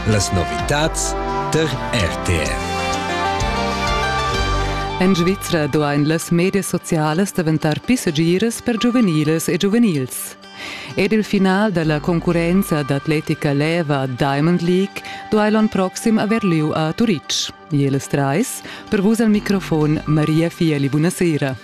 Las novitads tar RTR. En Svizra duain las medias socialas daventar pli segiras per giuveniles e giuvenils. Ed il final dalla concurrenza d'atletica leva Diamond League duai l'on proxim haver lieu a Turitg. Jeles Treis, per vus al microfon Maria Fieli, buonasera.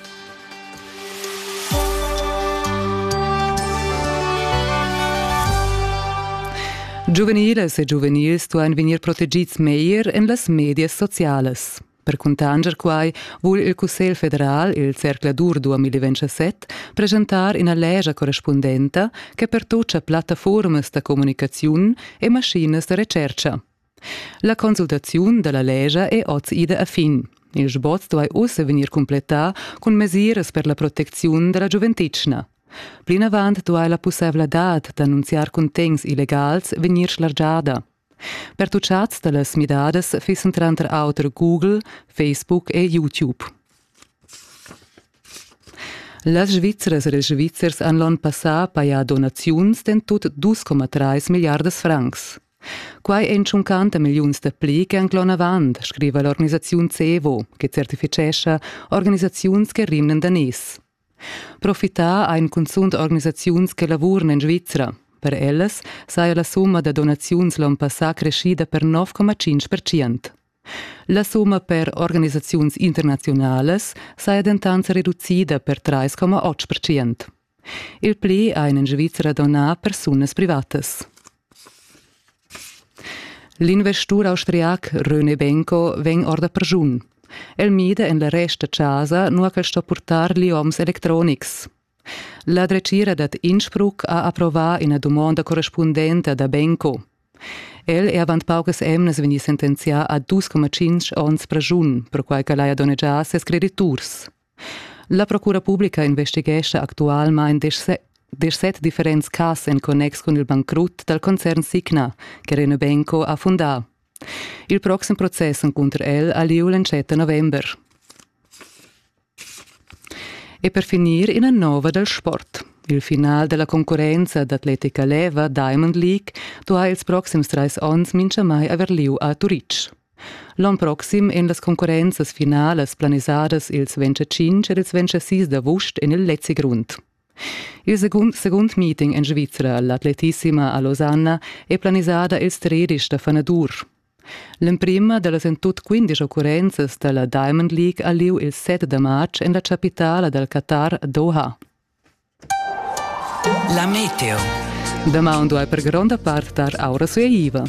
Giuveniles e giuvenils duain vegnir protegids meglier en las medias socialas. Per cuntanscher quai vul il Cussegl federal, il zercladur 2027, presentar ina legia correspundenta che pertutga plattaformas da communicaziun e maschinas da retschertga. La consultaziun da la lescha è oz ida a fin. Il sboz duai ussa vegnir cumplettà cun mesiras per la protecziun da la giuventetgna. Plinavant duai la pussaivladad d'annunziar cuntegns illegals vegnir schlargiada. Per tutschads da las midadas fissan tranter auter Google, Facebook e YouTube. Las Svizzras e ils Svizzers han l'onn passà pajà donaziuns d'en tut 2,3 milliardas francs. Quai ein tschuncanta milliuns da pli che han clon avant, scriva l'organisaziun Cevo, che certificescha organisaziuns che rimnan da nies. Profitar ein cunzunt organisaziuns che lavuran en Svizra. Per ellas saja la summa da donaziuns l'onn passà creschida per 9,5%. La summa per organisaziuns internazionalas saja dentant reducida per 3,8%. Il pli ein en Svizra donà persunas privatas. L'investur austriac René Benko vegn orda pergiun. El mida en la resta casa, nua ch'el sto purtar lioms electronics. La dretgira dad Innsbruck ha approvà ina dumonda correspundenta da Benko. El è avant paucas emnas vegnì sentenzià a 2,5 onns pregiun, perquai ch'el haja donnegià ses crediturs. La procura publica investighescha actualmain deschset differents cas en connex cun il bancrut dal concern Signa che Renobenco ha fundà. Il proxim process encunter el ha lieu l'entschatta november. E per finir ina nova dal sport. Il final della concurenza d'atletica leva Diamond League do ha ils proxims trais onns mincha mai aver lieu a Turitg. L'on proxim ein las concurrenzas finalas planisadas ils 25 ed ils 26 d'avust en il Lezi Grund. Il secund, secund meeting en Svizra, l'atletissima a Losanna, è planisada ils 13 da fanadur. L'emprima dallas en tut 15 occurrenzas dalla Diamond League ha lieu il 7 da marz en la capitala dal Qatar, Doha. La meteo. Damaun duai per gronda part dar aura sueiva.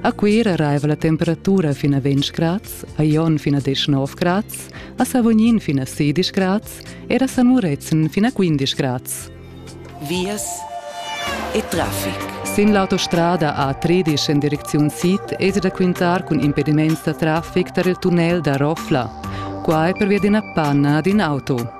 A Cuira raiva la temperatura fin a 20 grads, a Jon fin a 19 grads, a Savognin fin a 16 grads e a San Murezzan fin a 15 grads. Vias e traffic. Sin l'autostrada A13 en direcziun sid es da quintar cun impediments da traffic tar il tunnel da Rofla. Qua è pervia d'ina panna ad in auto.